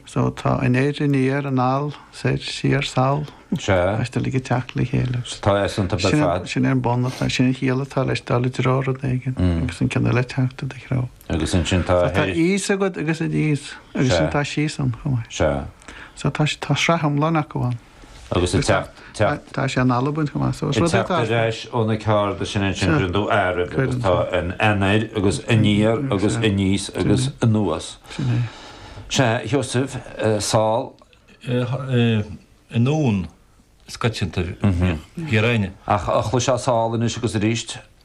So tá anoir aniar anall, soir siar sall. Sea. Agus tá siad uilig ag teacht le chéile. So tá easanta ar fad. Sin é an bun atá, sin an chiall atá leis dul i dtreo rud éigin agus an ceann eile teacht i do threo. Agus ansin tá a théis. Tá thíos agat agus aníos agus sin tá síos ann chomh maith. Sea. So tá sraith iomlán acu ann. agus ag teacht ar ais ó na cearda sin ansin rinne tú áireamh agus tá an anoir agus aniar agus aníos agus anuas. Sea, Sheosaimh, sall? Anonn is coitianta. Ach chloisfeá sall anois agus aríst.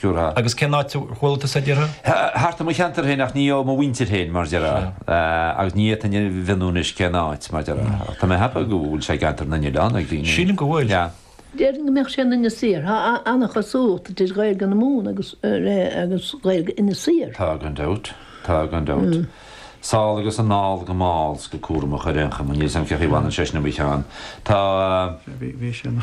Sure. Agus cén áit a bhfuil tú sa deireadh? Thart i mo cheantar féin ach ní ó mo mhuintir féin mar a déarfá agus ní fhéadfainn a mhionnú anois cén áit mar a déarfá. Ach tá mé happy go bhfuil sé i gCeantar na nOileán ag daoine. Sílim go bhfuil. Yeah. Déarfainn go mbeadh sé in Inis Oírr. Tá an-chosúlacht idir Ghaeilge na Mumhan agus agus Ghaeilge Inis Oírr. Tá gan dabht. Tá gan dabht. Sall agus anall go mall 's go cúramach ar aon chuma. Níl 's agam cé chaoi a bhfanann sé sin i mo cheann. Tá. Bhí sé ina.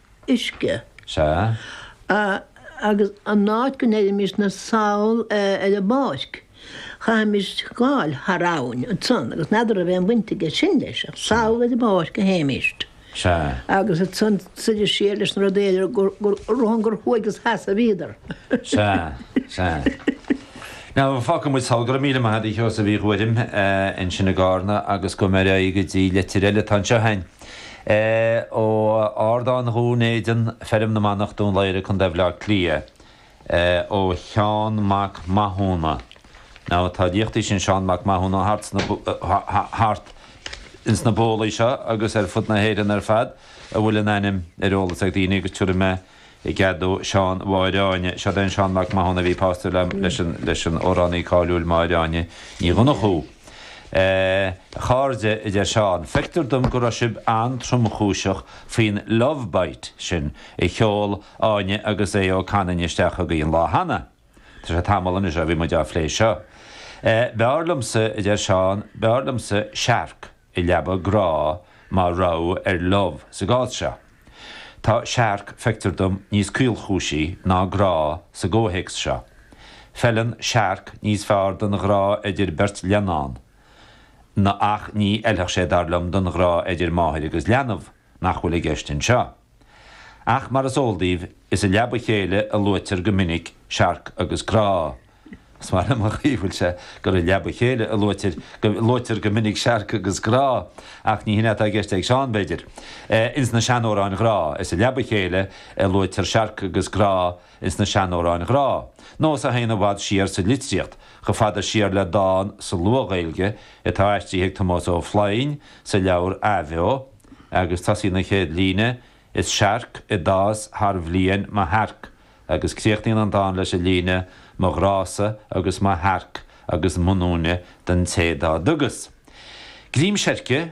uisce. Sea. Agus an áit go ndeirimisne sall ar an bpáirc, chaithfimis gabháil thar abhainn ansan, agus n'fheadar a' raibh aon bhaint aige sin leis, ach sall ar an bpáirc a théimis. Sea. Agus ansan soir siar leis na rudaí eile ar a shon gur thuaidh is theas a bhíodar. Sea, sea. Now fágfaidh muid sall. Go raibh míle maith a'd a Sheosaimh Uí Ghuairim ansin i gCarna agus gabhfaidh mé ar aghaidh go dtí leitir eile atá anseo a'inn. Ó Ardán Dhún Éideann, Feirm na Manach, Dún Laoghaire, Co. Bhaile Átha Cliath, ó Sheán Mac Mathúna. Now tá a liachtaí sin Seán Mac Mathúna thart ins na bólaí seo agus ar fud na hÉireann ar fad a bhfuil an ainm ar eolas ag daoine agus tiubhraidh mé I gcead dó Seán Mháire Áine, seo'd é an Seán Mac Mathúna a bhí pósta le leis an amhránaí cáiliúil Máire Áine Ní Dhonnchadha. A chairde, a deir Seán, feictear dom go raibh sibh an-tromchúiseach faoin 'love bite' sin a sheol Áine agus Aodh Ó Canainn isteach chugaibh an lá cheana. Tá sé tamall anois ó bhí muid á phlé seo. B'fhearr liomsa, a deir Seán, b'fhearr liomsa searc. i leaba grá mar rogha ar love sa gcás seo. Tá searc, feictear dom, níos caolchúisí ná grá sa gcomhthéacs seo. Feileann searc níos fearr don ghrá idir beirt leannán, na ach ní fheilfeadh sé, dar liom, don ghrá idir máthair agus leanbh. nach bhfuil i gceist anseo. Ach mar is eol daoibh, is i leaba chéile a luaitear go minic searc agus grá. Is maith liom an chaoi a bhfuil sé, gur i leaba chéile a luaitear, a luaitear go minic searc agus grá. Ach ní hin é atá i gceist ag Seán, b'fhéidir. Ins na seanamhráin ghrá, is i leaba chéile a luaitear searc agus grá. ins na seanamhráin ghrá, nós a théann i bhfad siar sa litríocht, chomh fada siar le dán sa Luath-Ghaeilge atá aistrithe ag Tomás Ó Floinn sa leabhar Athbheo, agus tosaíonn an chéad líne, 'Is searc a d'fhás thar bhliain mo shearc', agus críochnaíonn an dán leis an líne, 'Mo ghrá-sa agus mo shearc agus m'ionúine don té dá dtugas greim seirce'.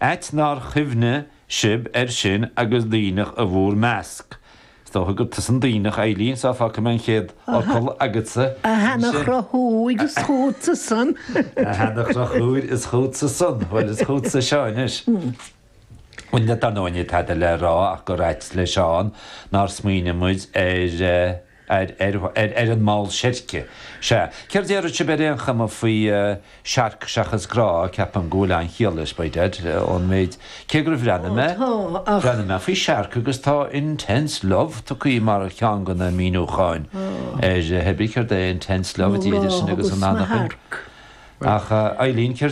Ait nár chuimhnigh sibh air sin agus Duibhneach in bhur measc. Is dócha gur tusa an Duibhneach, Eileen, so fágfaidh mé an chéad fhocal agatsa. A sheana-Chonchúir, is chútsa san. A sheana-Chonchúir, is chútsa san. Bhuel, is chútsa seo anois. Bhuel, níl dar ndóigh níl tada le rá ach gur ait le Seán nár smaoinigh muid ar. ar an mball seirce. Sea, céard a déarfadh sibh ar aon chuma faoi Searc seachas Grá, ceapaim go bhfuil an-chiall leis, b'fhéidir, ón méid, cé gur bhreathnaigh mé, bhreathnaigh mé faoi Searc agus tá Intense Love tugthaí mar cheann de na míniúcháin air, hé bith céard é Intense Love, idir sinn agus an anachain. Ach, a Eileen, céard.